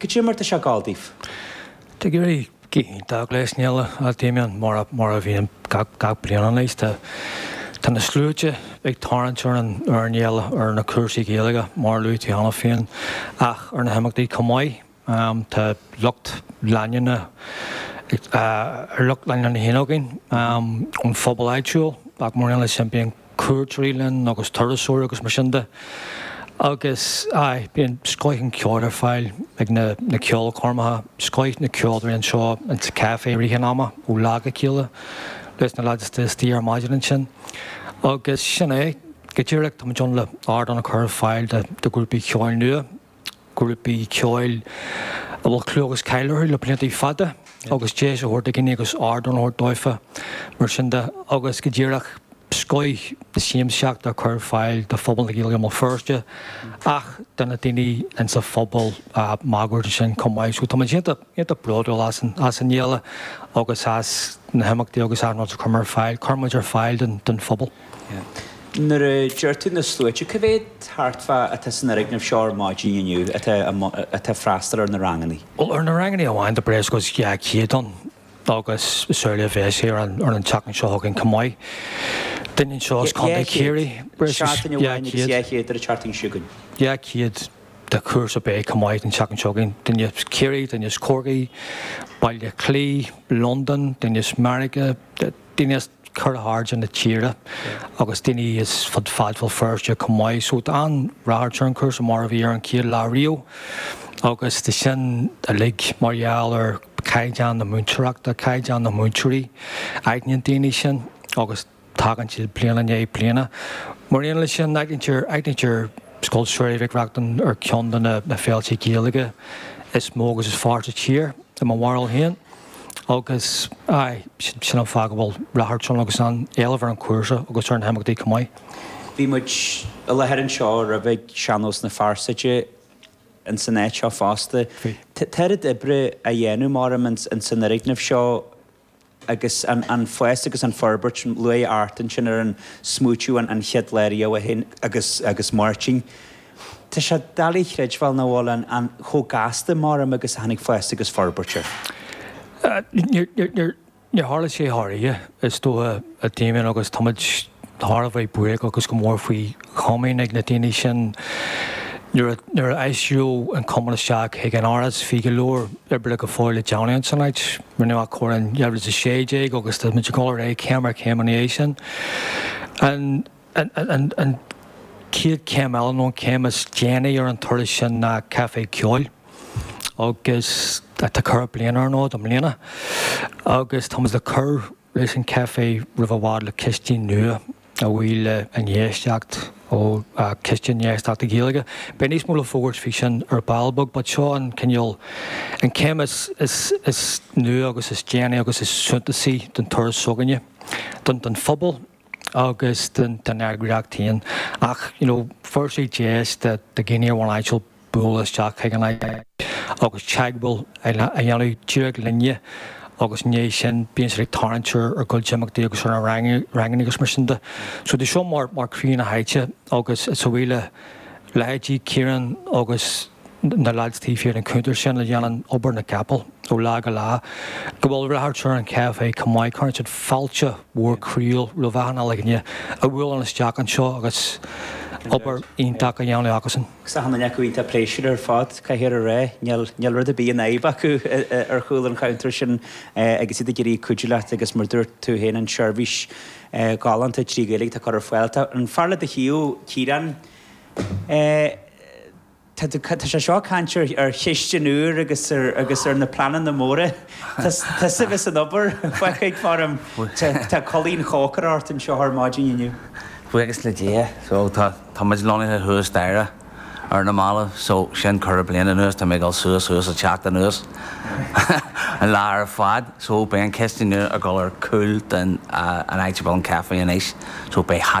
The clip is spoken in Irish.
Goidé mar tá sé ag gabháil daoibh? Tá ag éirí go hiontach leis an fhéile, a Damien, mar a bhíonn gach bliain anois. Tá na sluaite ag tarraingt ar an fhéile ar na cúrsaí Gaeilge mar a luaigh tú cheana féin ach ar na himeachtaí chomh maith. Tá lucht leanúna ar lucht leanúna na hÉin againn ón phobal áitiúil ach mar aon leis sin bíonn cuairteoirí linn agus turasóir agus mar sin de agus aye bíonn scoith an cheoil ar fáil ag na na ceolchoirmeacha, scoith na ceoltóirí anseo in sa café i rith an ama ó lá go chéile leis na lads atá istigh ar maidin ansin agus sin é go díreach tá muid ann le ardán a chur ar fáil do do ghrúpaí ceoil nua. grúpaí ceoil a bhfuil clú agus cáil orthu le blianta fada agus deis a thabhairt do dhaoine agus ardán a thabhairt daofa mar sin de agus go díreach scoith na siamsaíochta a chur ar fáil do phobal na Gaeilge i mBéal Feirste ach do na daoine ins an phobal máguaird ansin chomh maith so tá muid iontach bródúil as an as an fhéile agus as na himeachtaí agus as an rud a chuir muid ar fáil don phobal. Nuair a deir tú na sluaite, cé mhéad thart fá atá san fhoirgneamh seo ar maidin inniu atá atá ag freastal ar na rangannaí? Bhuel, ar na rangannaí amháin tá breis agus 200 ann agus is amhlaidh a bheas sé ar an ar an tseachtain seo chugainn chomh maith. Duine anseo as Contae Chiarraí, breis agus 200. Seachtain amháin agus 200 ar an tseachtain seo chugainn. 200 de chúrsa beidh chomh maith an tseachtain seo chugainn, duine as Ciarraí, duine as Corcaigh, Baile Átha Cliath, Londain, duine as Meiriceá, daoine as ceithre hairde na tíre agus daoine as fud fad Bhéal Feirste chomh maith. So tá an-ráchairt ar an chúrsa mar a bhí ar an chéad lá riamh agus tá sin uilig mar gheall ar chaighdeán na múinteoireachta, caighdeán na múinteoirí. Aithníonn daoine sin agus tagann siad bliain i ndiaidh bliana. Mar aon leis sin, aithnítear Scoil Samhraidh Mhic Reachtain ar cheann de na féilte Gaeilge is mó agus is fearr sa tír, i mo bharúil féin. Agus, aye, sin an fáth go bhfuil ráchairt ann agus an-éileamh ar an chúrsa agus ar na himeachtaí chomh maith. Bhí muid i láthair anseo roimhe ag Sean-Nós na Fearsaide ins an áit seo fosta. Bhí. Tá oiread oibre á dhéanamh, maram, ins an fhoirgneamh seo agus an fás agus an fhorbairt, luaigh Art ansin ar an smaoitiú an chéad lá riamh é féin agus Máirtín, Tá sé doiligh a chreidbheáil nach bhfuil an an chomh gasta maram agus a tháinig fás agus forbairt air. Níor tharla sé thar oíche, is dócha, a Damien, agus táimid thar a bheith buíoch agus go mór faoi chomaoin ag na daoine sin nuair a nuair a aistríodh an cumann isteach chuig an Áras. Bhí go leor oibre go fóill le déanamh san áit. Rinneadh athchóiriú in 2016 agus táimid ag dul ar aghaidh céim ar chéim ina dhiaidh sin. An. An chéad chéim eile, nó an chéim is déanaí ar an turas sin ná Caifé Ceoil agus tá ceithre bliana ar an fhód i mbliana agus tá muid le cur leis an chaifé roimh i bhfad le cistin nua a bhuí le infheistíocht ó Chiste Infheistíochta Gaeilge. Beidh níos mó le fógairt faoi sin ar ball beag but seo an cineál, an chéim is nua agus is déanaí agus is suntasaí den turas s'againne, don phobal. agus den eagraíocht féin. Ach you know bheir sé deis do dhaoine ar bhonn áitiúil bualadh isteach chuig an áit agus teagmháil a dhéanamh díreach linne agus i ndiaidh sin bíonn siad ag tarraingt ar ár gcuid imeachtaí agus ar na ranganna agus mar sin de. So tá seo mar chroí na háite agus is a bhuí le leithéidí Ciarán agus na lads taobh thiar den chuntar sin a dhéanann obair na gcapall ó lá go lá, go bhfuil ráchairt ar an chaifé chomh maith, cuireann siad fáilte mhór croíúil roimh achan uile dhuine a bhuaileann isteach anseo agus obair iontach á dhéanamh acusan. Tá achan duine acu iontach pléisiúrtha ar fad, caithfear a rá, níl rud ar bith ina fhadhb acu ar chúl an chuntair sin agus iad ag iarraidh cuidiú leat agus mar a dúirt tú féin an tseirbhís ghalánta trí Ghaeilge atá curtha ar fáil. Tá an fear le do thaobh, Ciarán, Tá sé seo ag caint ar chistin úr agus ar na pleananna móra. Tá sibh as an obair, feicfidh, faraim. Tá culaith an chócaire ort anseo ar maidin inniu. Buíochas le Dia, so, tá, tá muid lonnaithe thuas staighre ar na mallaibh, so, sin ceithre bliana anuas, tá mé ag dul suas, suas is ag teacht anuas an lá ar fad. So, beidh an chistin nua ag dul ar chúl den áit a bhfuil an caifé anois, so, beidh.